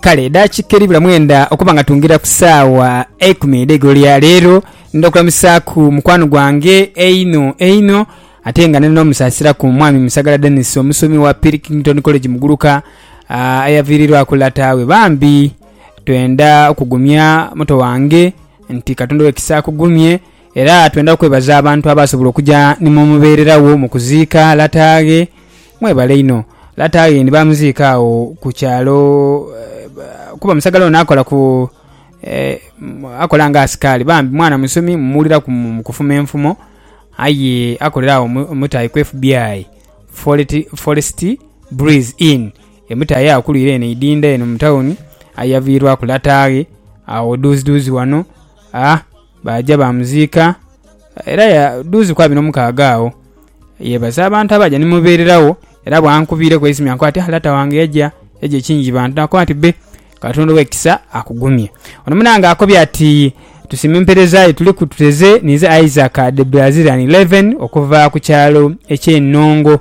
kale edakika eribula mwenda okuba nga tungira ku saawa eikumi edheigulo lya leero ndha okulamusaaku mukwano gwange einho einho ate nga nina omusasiraku mwami musagala denis omusomi wa pilkington college muguluka ah, eyaviirirwaku lata we bambi twenda okugumya muto wange nti katonda owekisa akugumye era twenda okwebaza abantu abasobola okuja nimumubererawo mukuziika lataaghe Mwebale inho. Lata aye ni baamuziika agho ku kyalo kuba musagala ono akola ku, akola nga asikaali. Bambi mwana musomi mmuwuliraku mu kufuma enfumo aye akolera agho mu mutaayi ku FBI, Forest Breeze Inn, emutaayi eyakulwire eno eidhindha eno mu tawuni aye yaviirwaku lata ghe agho dhuuzidhuuzi ghano. Aa, baaja baamuziika, era dhuuzi ku abiri n'omukaaga agho yeebaza abantu abaaja ni mubeereragho. Era bwankubiireku eisimyo ankoba ati, 'Ah, lata wange yaja, yaja ekingi bantu. Naakoba nti, Be, Katonda ow'ekisa akugumye. Ono munaange akobye ati, Tusiima empeereza yo. Tuliku tuteze ninze Isaac Debrazilian Levin okuva ku kyalo eky'e Nongo.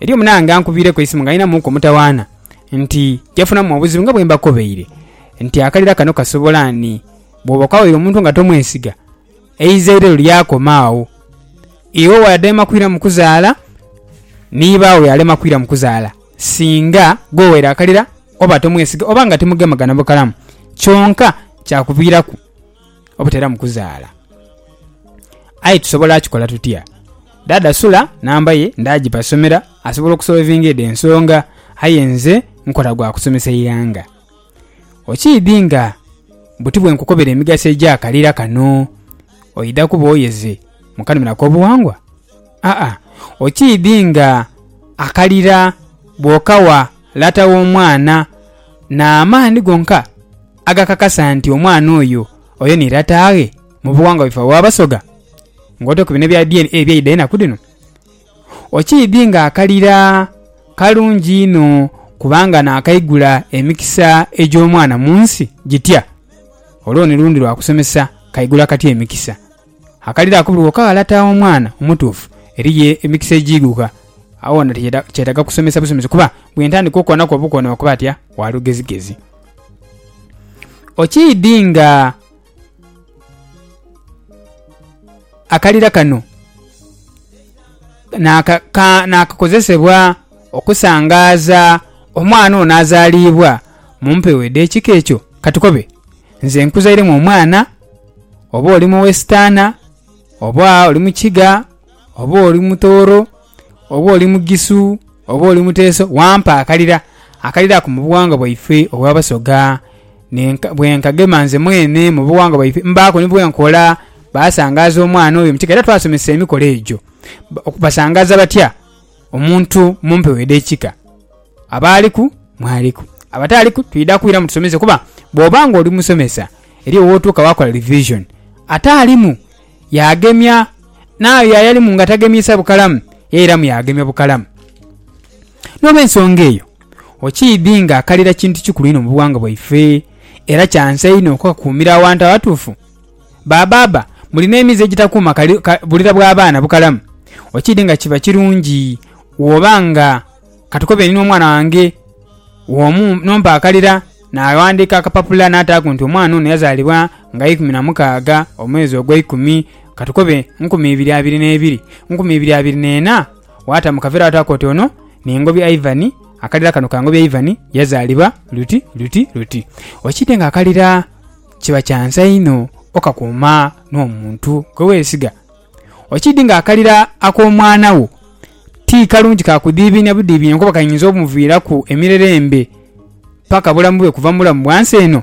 Eriyo munaange ankubiireku eisimu ng'alinamuuku omutawaana nti yafunamu obuzibu nga bwe mbakobeire nti akalira kano kasobola ni bw'oba okawaire omuntu nga tomwesiga eizairero lyakoma agho. Iwe waadema kwira mu kuzaala ni baagho yaalema kwira mu kuzaala singa gw'owaire akalira oba tomwesiga oba nga timugemagana bukalamu kyonka kyakuviiraku. obuteramu kuzaala. Aye tusobola kikola tutya? Dhaadha Sula namba ye ndaagiba somera asobola okusolovinga edho ensonga, aye nze nkola gwa kusomesa ighanga. Okiidhi nga buti bwe nkukobera emigaso egy'akalira kano, oidha kuba oyeze mu kanhumiro ak'obughangwa? Aa, okiidhi nga akalira bw'okawa lata w'omwana n'amaani gonka? agakakasa nti omwana oyo oyo ni lataaghe mu bughangwa bwaife obw'Abasoga? Ng'otaire ku bino ebya DNA ebyaidha enaku dhino, okiidhi nga akalira kalungi inho kubanga naakaigula emikisa egy'omwana mu nsi gitya. Olwo ni lundi lwa kusomesa kaigula katya emikisa. Akalira ako buli wokagha lataaghe omwana omutuufu, eriyo emikisa egiighuka. Agho wona kyetaaga kusomesa busomesi kuba bwe ntandika okukonaku obukono okuba ati, a, wa lugezigezi. Okiidhi nga akalira kano naakakozesebwa okusangaaza omwana ono azaaliibwa mu mpewo edh'ekika ekyo? Ka tukobe nze nkuzairemu omwana, oba oli Muwesitaana, oba oli Mukiga, oba oli Mutooro. oba oli mugisu oba oli muteeso wampa akalira, akalira ako mu buwangwa bwaife obw'Abasoga nenka bwe nkagema nze mwene mu buwangwa bwaife mbaaku ni bwe nkola. Baasangaaza omwana oyo mu kika era twasomesa emikolo egyo. Basangaaza batya omuntu mu mpewo edh'ekika? Abaaliku mwaliku, abataaliku twidha kwiramu tusomese kuba bw'oba ng'oli musomesa eriyo w'otuuka waakola revison, ataalimu yaagemya, n'ayo ayalimu ng'atagemyisa bukalamu, yairamu yaagemya bukalamu. N'olw'ensonga eyo, okiidhi ng'akalira kintu kikulu inho mu bughanga bwaife, era kya nsa inho okukakuumira awantu awatuufu. Ba baaba, muli n'emize egitakuuma kalira bwa baana bukalamu, okiidhi nga kiba kirungi bw'oba nga. Katukobe ni n'omwana wange omu n'ompaakalira, naaghandiika akapapula naataaku nti omwana ono yazaalibwa nga ikumi na mukaaga omwezi ogweikumi, katukobe nkumi ibiri abiri n'ebiri, nkumi ibiri abiri n'ena, waata mu kaveera waataaku oti ono ni Ngobi Ivan, akalira kano ka Ngobi Ivan yazaalibwa luti luti luti. Okiidde ng'akalira kiba kya nsa inho okakuuma n'omuntu gwe weesiga. Okiidhi nga akalira ak'omwana wo ti kalungi ka kudhiibinia budhiibinia kuba kainza omuviiraku emirere embe paka bulamu bwe kuva mu bulamu bwa nsi eno.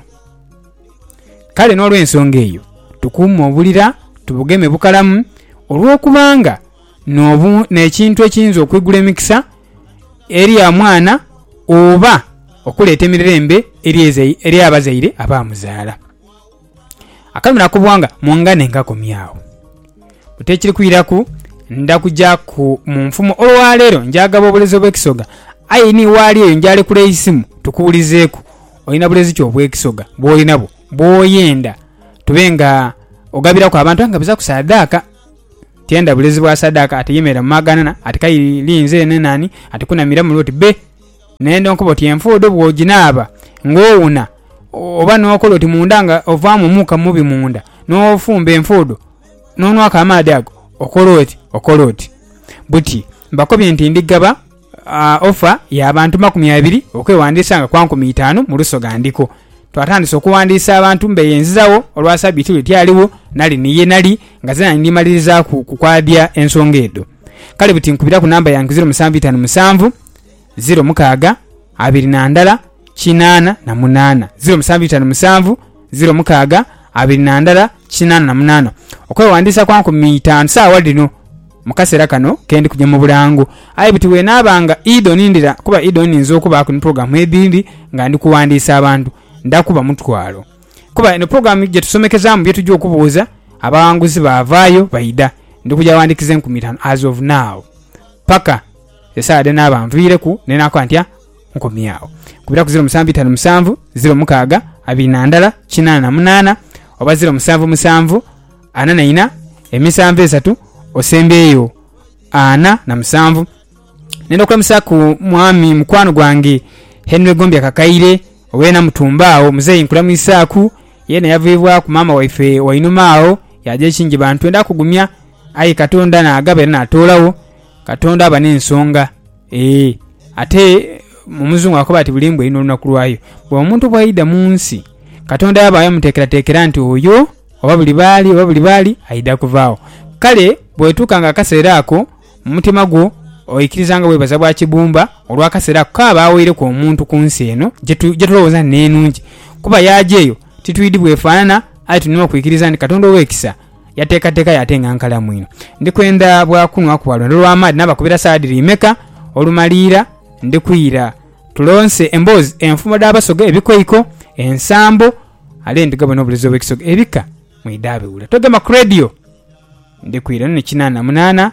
Kale n'olwensonga eyo, tukuume obulira tubugeme bukalamu olw'okubanga n'obu n'ekintu ekiyinza okwigula emikisa eri omwana oba okuleeta emirere embe eri abazaire abaamuzaala. Akali mu nakubwa nga mungane nkakomyagho. Buti ekiri kwiraku ndha kujaku mu nfumo olwa leero njaghagaba obulezi obw'ekisoga aye ni waali eyo njalekula eisimu tukuwulizeeku olina bulezi ki obw'ekisoga bw'oli nabwo bw'oyenda tube nga ogabiraku abantu aye nga buzaku saadaaka. Tienda bulezi bwa saadaaka ate yemerera mu maghanana ati k'aidhi nze nene ani ati kunamiramu lwoti bbe. N'endho nkoba oti enfuudu bw'oginaaba ng'owuna, oba n'okola oti munda nga ovaamu omuuka mubi munda, n'ofumba enfuudu, n'onwaku amaadhi ago, okola oti, okola oti. Buti mbakobye nti ndi ghaba ofa y'abantu makumi abiri okwewandiisa nga kwa nkumi itaanu mu lusoga ndiko. Twatandise okuwandiisa abantu mbeeyenzizagho olwa Sabiiti lwe tyaligho nali ni ye nali nga zeena ni ndimalirizaaku kukwabya ensonga edho. Kale buti nkubiraku namba yange zeero musanvu itaanu musanvu. ziro mukaaga abiri na ndala kinaana na munaana ziro musanvu itaanu musanvu ziro mukaaga abiri na ndala kinaana na munaana okwewandiisa kwa nkumi itaanu saawa dhino mu kaseera kano ke ndi kuja mu bulango aye buti bwenaaba nga idho nindira kuba idho nninza okubaaku ni pulogulaamu edhindi nga ndi kuwandiisa abantu nda kuba mutwalo kuba eno pulogulaamu gye tusomekezaamu bye tujja okubuuza abawanguzi baavaayo baidha ndi kuja wandiikiza enkumi itaanu as of now paka Esaala dhe naaba anviireku ne naakoba nti, A, nkomye agho. Kubiraku ziro musanvu itanu musanvu, ziro mukaaga abiri na ndala kinaana na munaana, oba ziro musanvu musanvu ana na ina, emisanvu esatu osembyeyo ana na musanvu. Nenda okulamusaku mwami mukwano gwange Henry Gombya Kakaire owe Namutumba agho. Muzeeyi nkulamwisaaku. Yeena yavaibwaku maama waife wainuma agho yaaja e Kingiba. Ntwenda kugumya, aye Katonda naagaba era naatoolagho. Katonda aba n'ensonga. Ee, ate Omuzungu akoba ati buli mbwa erina olunaku lwayo. Bwe omuntu bw'aidha mu nsi, Katonda yaba yamuteekerateekera nti oyo oba buli baali oba buli baali aidha kuvaagho. Kale bwetuuka nga akaseera ako, mu mutima gwo oikiriza nga bwebaza bwa kibumba olw'akaseera ako k'aba awaireku omuntu ku nsi eno gye tulowooza nti n'enungi. Kuba yaaja eyo titwidhi bwefaanana, aye tulina okwikiriza nti Katonda ow'ekisa. yateekateeka yo ate nga nkalamu inho. Ndi kwendha bwa kunhwaku bwa lwendo lwa maadhi naabakubira saala dhiri imeka, olumaliira ndi kwira tulonse emboozi, enfumbo dh'Abasoga, ebikoiko, ensambo, ale ndi ghabona obulezi obw'Ekisoga, ebika mwidha biwula. Togema ku Radio! Ndi kwira. Eno ni kinaana munaana.